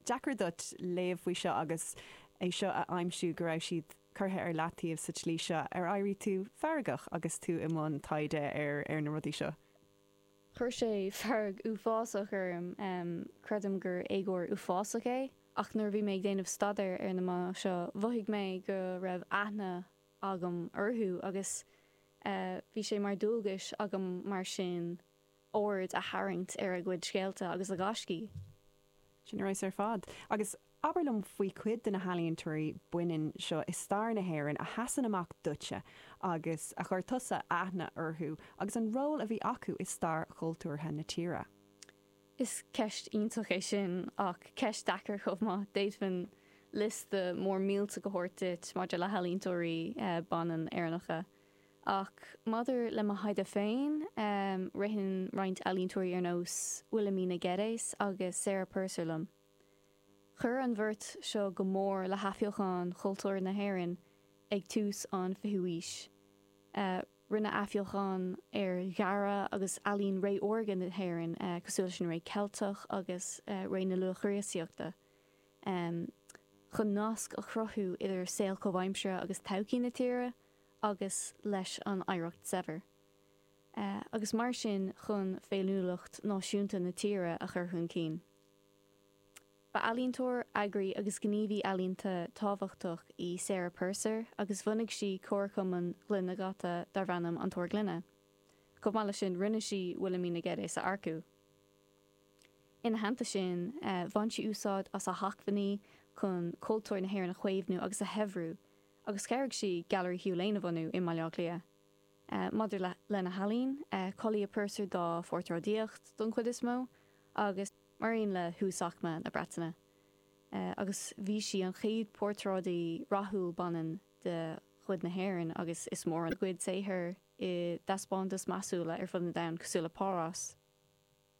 deacair duit léamh faoi seo agus é seo a aimsiú go raibh siad curtha ar leataobh sa tslí seo ar éirigh tú feargach agus tú i mbun taighde ar na rudaí seo? Chuir sé fearg uafásach orm, creidim gur éagóir uafásach é, ach nuair a bhí mé ag déanamh staidéir ar na mná seo mhothaigh mé go raibh aithne agam orthu agus bhí sé mar dhualgas agam mar sin aird a tharraingt ar a gcuid scéalta agus a ngaiscí. Sin ar fheabhas ar fad. Agus abair liom faoi chuid de na healaíontóirí baineanna seo i stair na hÉireann a sheasann amach duitse agus a chuir tusa aithne orthu agus an ról a bhí acu i stair chultúrtha na tíre. Is ceist iontach é sin, ach ceist deacair chomh maith. D'fhéadfainn liosta mór millteach a thabhairt duit maidir le healaíontóirí baineanna Éireannacha. Ach maidir le mo thaighde féin, ritheann roinnt ealaíontóirí ar nós Wilhelmina Geddes agus Sarah Purser liom. Chuir an bheirt seo go mór le hathbheochan chultúr na hÉireann ag tús an 20ú haois. Rinneadh athbheochan ar dhearadh agus ealaín ré órga na hÉireann, cosúil leis an ré Cheilteach agus ré na Luath-Chríostaíochta, chun nasc a chruthú idir saol comhaimseartha agus todhchaí na tíre. agus leis an oidhreacht shaibhir, agus mar sin chun féiniúlacht náisiúnta na tíre a chur chun cinn. Ba ealaíontóir, eagraí agus gníomhaí ealaíonta tábhachtach í Sarah Purser agus bhunaigh sí Comharchumann gloine dhaite darb ainm An Túr Gloine. Chomh maith leis sin, rinne sí Wilhelmina Geddes a earcú. Ina theannta sin, bhain sí úsáid as a hacmhainní chun cultúr na hÉireann a chaomhnú agus a shaibhriú. agus chabhraigh sí Gailearaí Hugh Lane a bhunú i mBaile Átha Cliath. Maidir lena healaín, tá clú ar Purser dá phortráidíocht don chuid is mó, agus mar aon le huasaicme na Breataine, agus bhí sí an chéad portráidí rathúil baineann de chuid na hÉireann, agus iliomad dá cuid saothar i dtaispeántais measúla ar fud an domhain cosúil le Párás.